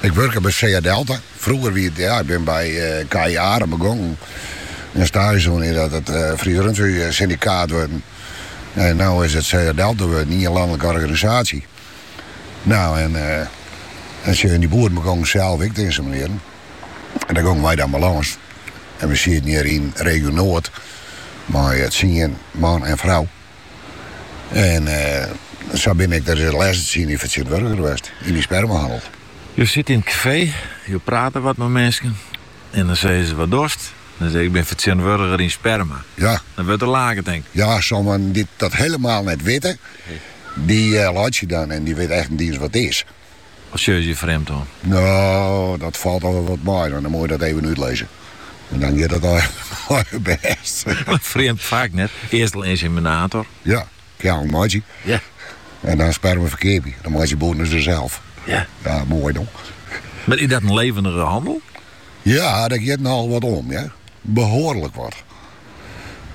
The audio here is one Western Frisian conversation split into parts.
Ik wurke by Sea Delta. Frûger wie it, ja, ik bin by KI Arem begongen en staazje dien ear't dat it Fries Rundfee Syndikaat wurden. En no is it Sea Delta wurden, ien lanlike organisaasje. Nou, en in soad boeren begongen sels ek te inseminearjen. En dêr gongen wy dan by lâns. En we sieten hjir yn Regio Noard mei tsien man en frou. En eh, sa bin ik de lêste tsien jier fertsjintwurdiger west yn de spermahannel. Jo sitte yn it kafee, jo prate wat mei minsken en dan sizze se, wat dochst? Dan sis ik, ik bin fertsjintwurdiger yn sperma. Ja. Dan wurdt der lake, tink. Ja, sommigen dy't dat helemaal net witte, dy eh, laitsje dan en dy witte echt net iens wat it is. Wat sjogge se je frjemd oan? No, dat falt al wol wat mei, dan moat je dat even útlizze. En dan giet it al heel bêst. Frjemd faak net. Earst al inseminator. Ja, keallen meitsje. Ja. En dan sperma ferkeapje. Dan meitsje boeren se sels. Ja. Ja, mooi dan. Maar is dat een levendige handel? Ja, daar giet nogal wat om, ja. Behoorlijk wat.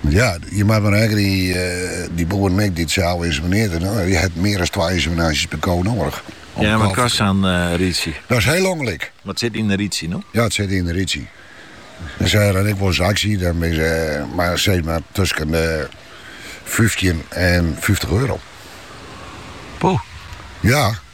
Ja, je moat mar rekkenje, dy boeren ek dy't sels inseminearje, dan je ha mear as twa inseminaasjes per ko noadich. Ja, wat kost sa'n reidsje? Dat is hiel ûngelyk. Wat sit yn in reidsje dan? Ja, wat sit yn in reidsje? Dan se ha dan ek wolris aksje, dan binne se mar seis mar tusken de fyftjin en fyftich euro. Poeh. Ja.